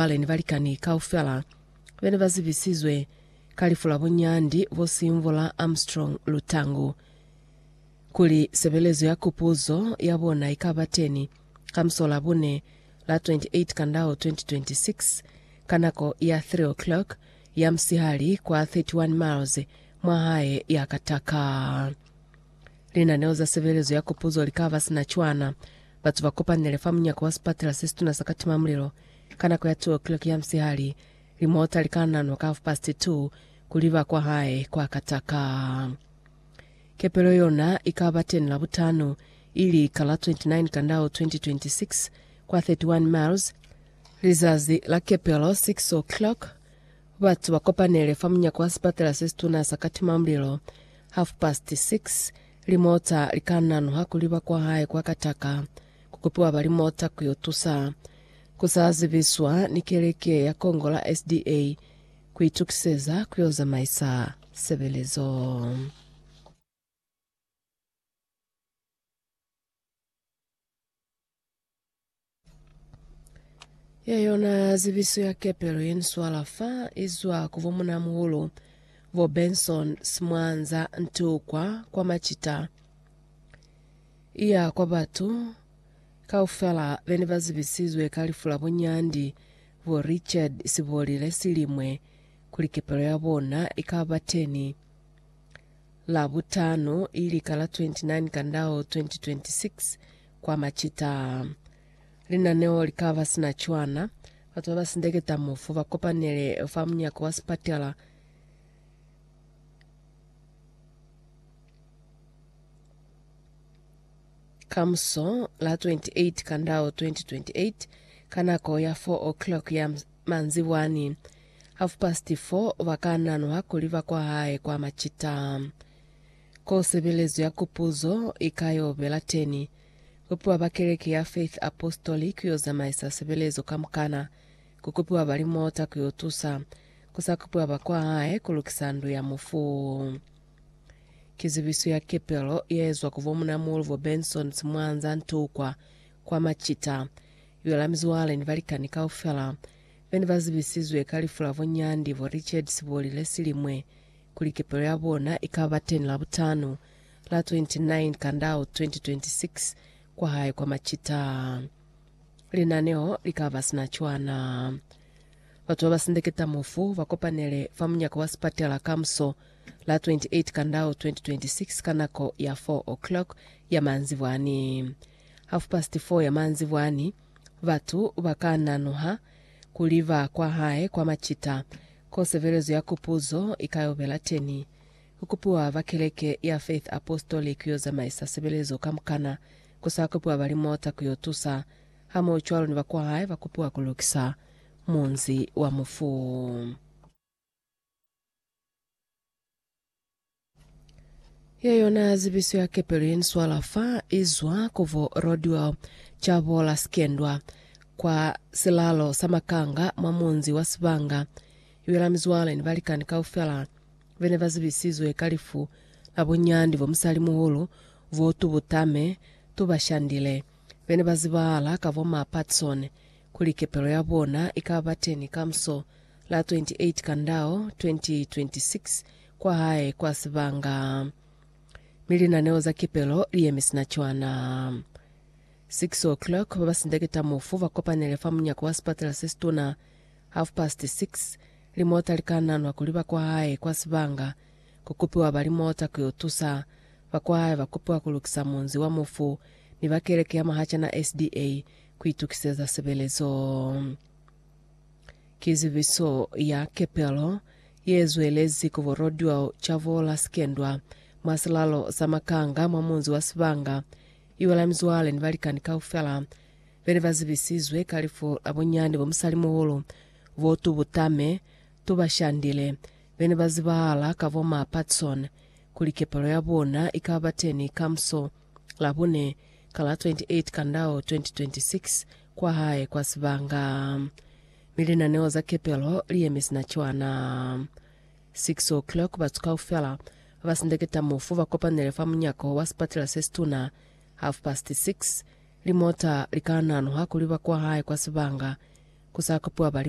Mabale ni balikani kaufela be ne ba zibisizwe ka lifu la bunyandi bo sinvo la Armstrong Lutangu. Kuli sebelezo ya kupuzo ya bona i ka ba teni ka musola bune la 28 Kandao 2026 ka nako ya 3 o'clock ya musihali kwa 31 miles mwa hae ya Kataka. Linaneo za sebelezo ya kupuzo li ka ba sina cwana. Batu ba kopanile fa munyako wa sipatela se situna sa Katimamulilo Ka nako ya 2 o'clock ya musihali, limota li ka nanwa ka half-past 2 ku liba kwa hae kwa Kataka. Kepelo yona i ka ba teni Labutano, ili ka la 29 Kandao 2026, kwa 31 miles. Lizazi la kepelo 6 o'clock, batu ba kopanele fa munyako wa sipatala se situna sa Katimamulilo. Half-past 6, limota li ka nanwa ku liba kwa hae kwa Kataka. ku kupiwa ba limota ku yo tusa ku sa zibiswa ni keleke ya Kongo la SDA ku itukiseza ku yo zamaisa sebelezo. Ye yona zibiso ya kepelo ye ni swala fa izwa ku bo munamuhulu bo Benson Simwanza Ntukwa kwa Macita. Iya kwa batu kaufela bene ba zibisizwe ka lifu la bo Nyandi, bo Richard Sibolile Silimwe, kuli kepelo ya bona ikaba teni la butano ili ka la 29 Kandao 2026 kwa macita a. Linaneo likaba sina cwana, batu baba sindeketa mufu ba kopanele fa munyako wa sipatela, Kamuso, la 28 Kandau 2028, ka nako ya 4 o'clock ya ms- manzibwani, half past 4, ba ka nanwa kuli ba kwa hae kwa macita. Ko sebelezo ya Kupuzo i ka yo bela teni, ku piwa ba Keleke ya Faith Apostolic ku yo zamaisa sebelezo kamukana, ku kupiwa ba limota ku yo tusa, ku sa kupiwa ba kwa hae ku lukisa ndu ya mufu. Ki zibiso ya kepelo ye ezwa ku bo Munamuhulu bo Bensons mwa Nzantukwa, kwa Machita, yo la mizwale ni balikani kaufela be ne ba zibisizwe ka lifu la bo Nyandi bo Richard Siboli le silimwe, kuli kepelo ya bona i ka ba teñi Labutanu, la 29 Kandau 2026, kwa hae kwa Machita. Linaneo li ka ba sina cwana. Batu ba ba sindeketa mufu ba kopanele fa munyako wa sipatela kamuso la 28 Kandau 2026 ka nako ya 4 o'clock ya manzibwani. Half past 4 ya manzibwani, batu ba ka nanuha ku liba kwa hae kwa macita, ko sebelezo ya kupuzo i ka yo bela teni. Ku kupiwa ba keleke ya Faith Apostolic ku yo zamaisa sebelezo kamukana, ku sa kupiwa ba limota ku yo tusa, hamohocwalo ni ba kwa hae ba kupiwa ku lukisa munzi wa mufu. Ye yona zibiso ya kepelo ye ni swala fa i zwa ku vo Rodwell Chabola Sikendwa, kwa silalo sa makanga mwa munzi wa Sibanga, i bela mizwale ni balikani kaufela be ne ba zibisizwe ka lifu la bunyandi bo musalimuhulu voo tubuta me tu ba shandile, be ne ba zibahala ka bo ma Patson, kuli kepelo ya bona i ka ba teni kamuso la 28 Kandao 2026 kwahae kwa sibanga, mi linaneo za kipelo liyemi sina cwana. 6:00 babasindeketa mufu bakopanele fa munyako wa sipatela sesituna. Half past 6 limota likananwa kuli bakwahae kwa sibanga, kukupiwa ba limota kuyo tusa. Bakwahae bakupiwa kulukisa munzi wa mufu, mi ba keleke ya Mahachana SDA kuitukiseza sebelezo. Ki zibiso ya kepelo ye zwelezi ku borodyo ca bo Lasikendwa mwa silalo sa Makanga mwa munzi wa Sibanga. Iwela mizwale ni balikani kaufela be ne ba zibisizwe ka lifu la bunyani bwa musalimuhulu bo Tubutame Tubashandile be ne ba zibahala ka bo Ma Patson kuli kepelo ya bona i ka ba teni kamuso Labune ka la 28 Kandao 2026 kwa hae kwa sibanga, mi linaneo za kepelo li yemi sina cwana. 6:00, batu kaufela ba sindeketa mufu ba kopanele fa munyako wa sipatela se situna. 6:30, limota li ka nanuha kuli ba kwa hae kwa sibanga, ku sa kopiwa ba li mwa.